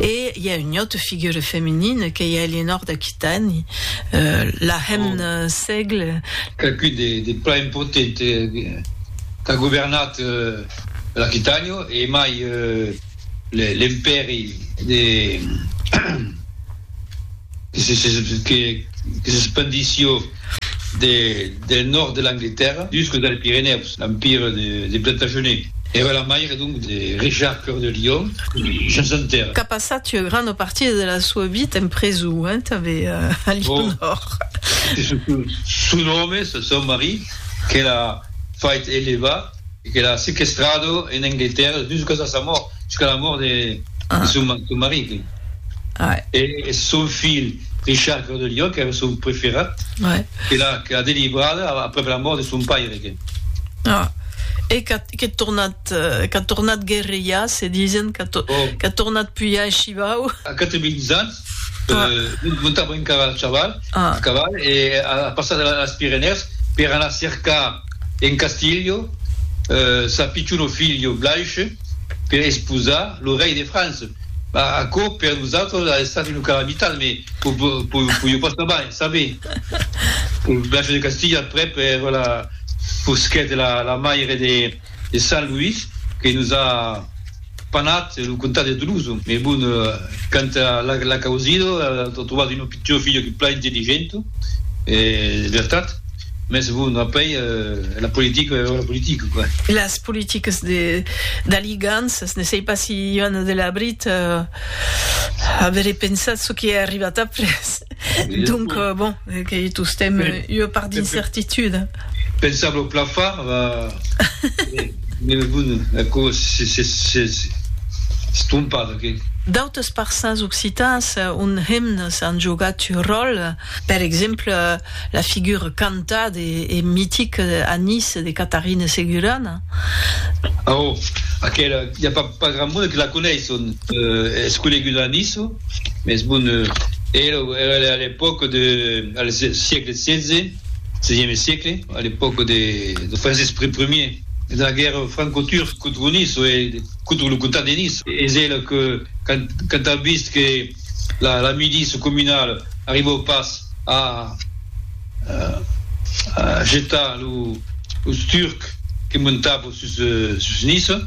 E i a un autre figure feminine qu'ei a Elinor d'Aquitàni, la hemna sègle. Qualqu'un des plan important qu'a governat l'Aquitània e emai l'empèri de que s'espandissi del nòrd de l'Angletèrra jusques als Pirenèus, l'empire de Plantagenet. Èra la maire donc de Richard Cœur de Lion, Chançantèr. Qu'a passat ua grana partida de la soa vita en preson, hein, tanben, a Lionòr. Son òme, son marit, que l'a fait elevar. E que l'a sequestrado en Angleterra, es dus casas amor, jusqu'a la mòrt de son marit. E son filh Richard Cœur de Lion, qu'èra son preferat, que l'a delivrada aprèp la mòrt de son paire. E qu'a tornat guerrilhar, se disen, qu'a tornat pujar Shivau. A quatre-vints ans. Montava un caval, chaval, un caval, e a passar de las Pirenèus per anar cercar en Castilho sa pichona filha Blanche per esposar lo rei de França. Aquò per nosautres a estat una calamitat, mai poieu pas saber que Blanche de Castilha aprèp fosquèt la maire de Saint Louis que nos a Panat, lo comtat de Toulouse. Mès bon, quand l'a causido, a trobat un pitjor filho que plan intelligento, es vertat, mès bon, après, la politica es la politica, quoi. Las politiques de d'aliganças, ne sei pas si Joana Delabrit a bèrre pensat çò qui ei arribat après. Donc, bon, que tostemp ua part d'incertitud. Pensar lo plafard, va, mais bon, aquò s'es trompat, ok. D'autres parsans occitans ont hemnes an jogat ua ròtle, per exemple, la figura cantada e mitica a Nice de Catarina Segurana. Aò, aquela, i a pas grand monde que la coneisson. Es coneguda a Nice? Mès bon, era a l'epòca de, al siegle setze, sezieme siegle, a l'epòca de Francés Pri, Primier, de la guèrra franco-turc contra lo Nice o contra lo comtat de Nice. Es ela que, quand a vist que la milicia comunala arribava pas a jetar los Turcs que montavan sus Niça,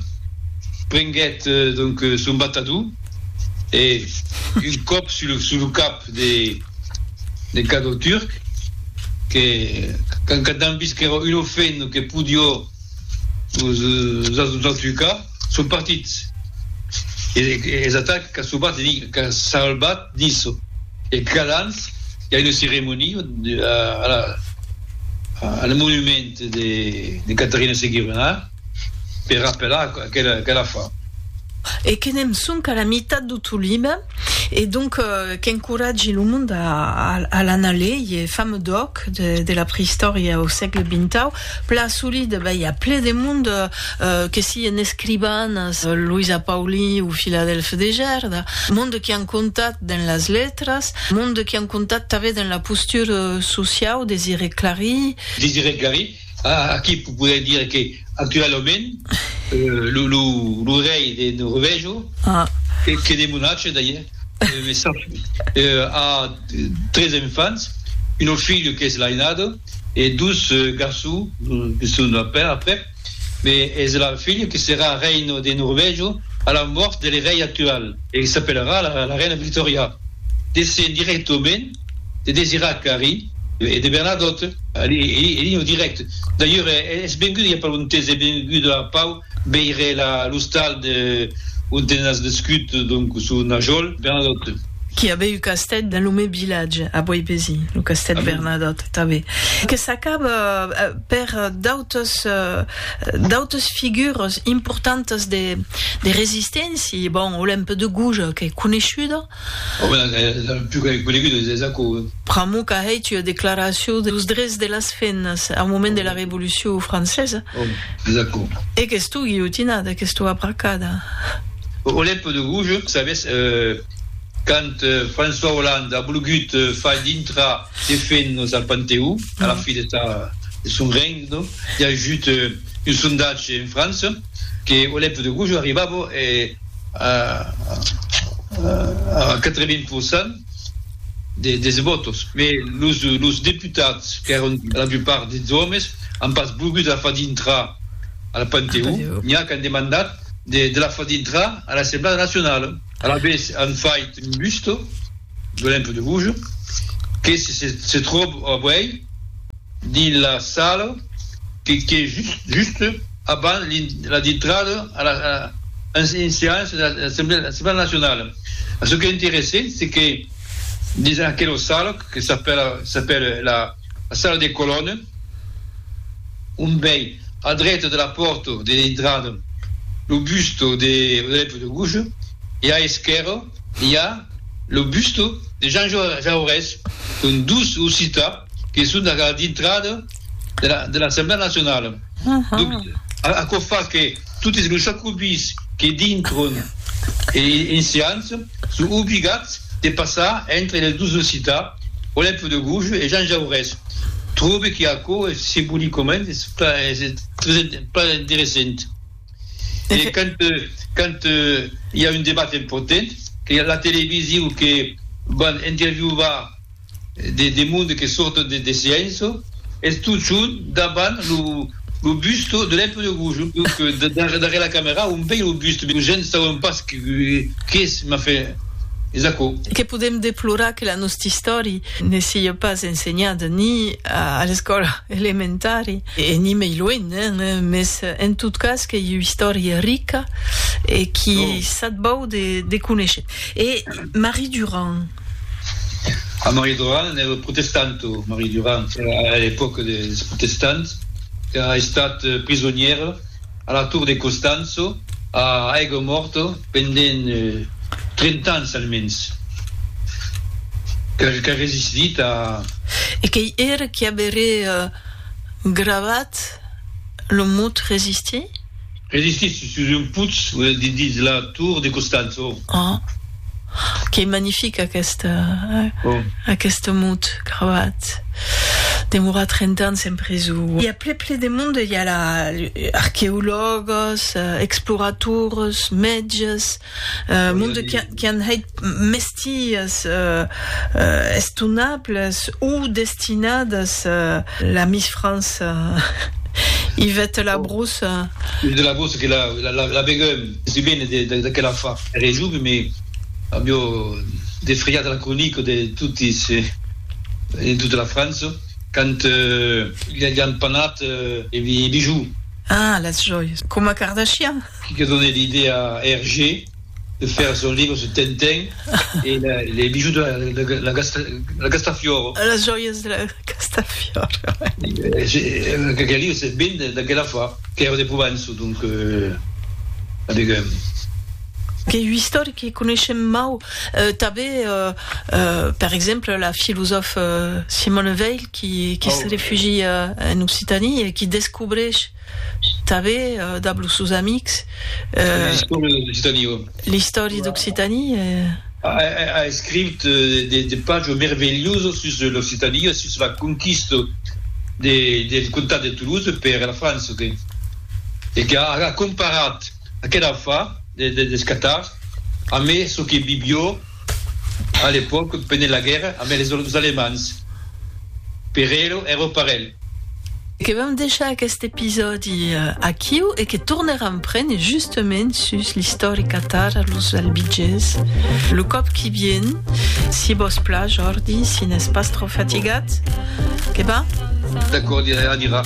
prenguèt donc son batador e un còp sus lo cap de Cado Turc, que quand an vist qu'èra un ofent que podió los atucar, son partits. Es atal qu'asobat li qu'a salvat. d'isso. E cada ans i a una ceremonia al monument de Caterina Seguí Renard per rapelar aquela fa. E que ne'm sonc a la mitat do tolim, e donc qu'encoratgi lo monde a l'anar leir fameux dòc de la preistòria au sègle vintau. Plan solide, ben i a ple de monde, que siguen escribanes, Luisa Paulí o Filadelf Degerda, monde qui an comptat dens las letras, monde qui an comptat tanben dens la postura sociau, Desiré Clary. Desiré Clary, a qui podem dire qu'es actualament lo rei de Norvègia, que de monarche d'ailhèr, a tres enfants, un filh qu'es l'ainado, e dus garçu que son a pè aprèp, me es la filh que serà reina de Norvègia a la mòrt del rei actual e que s'apelarà la reina Victòria, desent dirèctament de Desirà Carey e de Bernadotte. Eli, Eli, Elino dirèct. D'ailleurs, es venguda ja pas longtemps, es venguda a Pau Veire la l'ostal de on ten as vescut donc son najol Bernadotte. Qui a bèu castèth dans lo mèu vilatge, a Boipesi, lo castèth de Bernadotte, tanben, que s'acaba per d'autes d'autes figures importantes de de resisténcia, bon, Olèmpe de Gouges, qu'ei coneishuda, Òbra la pus coneguda es es aquò. Pr'amor qu'aèi ua declaracion deus drets de las femnas au moment de la Revolucion francesa. Òm, es aquò. E qu'estó guilhotinada, qu'estó abracada. Olèp de Gouge, sabes, quand François Hollande a volgut far dintrar de femnas al Panteon, a la fin de sa, de son règne, i a ajut un sondatge en França, que o lèp de Goujo arribava a 80 per cent des vòtos, mès los deputats, qu'èran la plupart de zòmes, an pas volgut la far dintrar al Panteó, n'i a qu'an demandat de la far dintrar a l'Assemblada Nacionala. Alavetz an fait un busto de lèp de Goujo que se tròba avui. dins la sala que qu'es just abans la dintrada a la en seança de l'Assemblèa Nacionala. Açò qu'es interessent se que dins aquela sala que s'apèl la sala de Colón, ont vei a dreta de la pòrta de dintrada lo busto de Rodolfo de Guscio e a esquèrra i a lo busto de Jean Jaurès, son dus occitans. que son a dintrada de l'Assemblèa Nacionala. Donc, aquò fa que totes los jacobins que dintron en Sianç son obligats de passar entre les dos occitans, Olympe de Gouges e Jean Jaurès. Tròbe qu'aquò, simbolicament, es plan interessent. E quand i a un debat important, que la televisiu que van interviuvar De monde que sort de Sieyso, es totjorn davant lo busto de l'emperador de Gujo, donc darrèr la camèra on vei lo busto, mès los gents saben pas qu'es, mas enfin, es aquò. Que podèm deplorar que la nòsta istòri ne siá pas ensenhada ni a l'escòla elementari e ni mei luenh, mès en tot cas qu'ei ua istòria rica e qui sat bòu de conéisher. E Marie Durand? A Marie Durand en ero protestanto, Marie Durand qu'èra a l'epòca des protestants, qu'èra estat prisonièra a la Tour de Costanzo a Aiguamòrta pendent trenta ans almens, qu'a resistit a. E qu'ei era qui aberé gravat lo mot resistir? Resistisse sus un putz dins la tour de Costanzo. Oh! Qu'ei magnific aquest, aquest mot gravat. Demorar trenta ans en preso. I a ple ple de monde, i a la arqueològas, explorators, mètges, monde qui an hèit mestiers estonables o destinades la miss France Yvette Labrousse Yvette Labrousse que la veguem si ben d'aquela fa ère jove me avió defriat la cronique de totis en tota la France quand li avián panat es bijoux ah las jòias coma Kardashian. Qui que donne l'idée à Hergé de faire son livre sur Tintin et les bijoux de la Castafiore? Les joies de la Castafiore, ouais. Aquel livre se ven d'aquela fa, qu'ère de Provenço, donc adeguem. Qu'ei ua istòria que coneishem mau. Tanben, per exemple, la filosòfa Simone Veil qui se refugie en Occitanie e qui descobreish, Tanben dab los sòus amics. L'istòria d'Occitània. L'istòria d'Occitània. A escriut de pages mervelhosas sus l'Occitània, sus la conquista del comtat de Toulouse per la França, e qu'a comparat aquel afar dels catars amé çò que vivió A l'epòca, pendent la guèrra amb es Alemands, Perello èra au parelh. Que vam deishar aqueste episòdi aquiu e que torneram prene justament sus l'istòric atar a los albigés lo còp qui vien, si vos pla, Jòrdi, si n'ès pas tròp fatigat. Que va? D'acòrdi, anirà.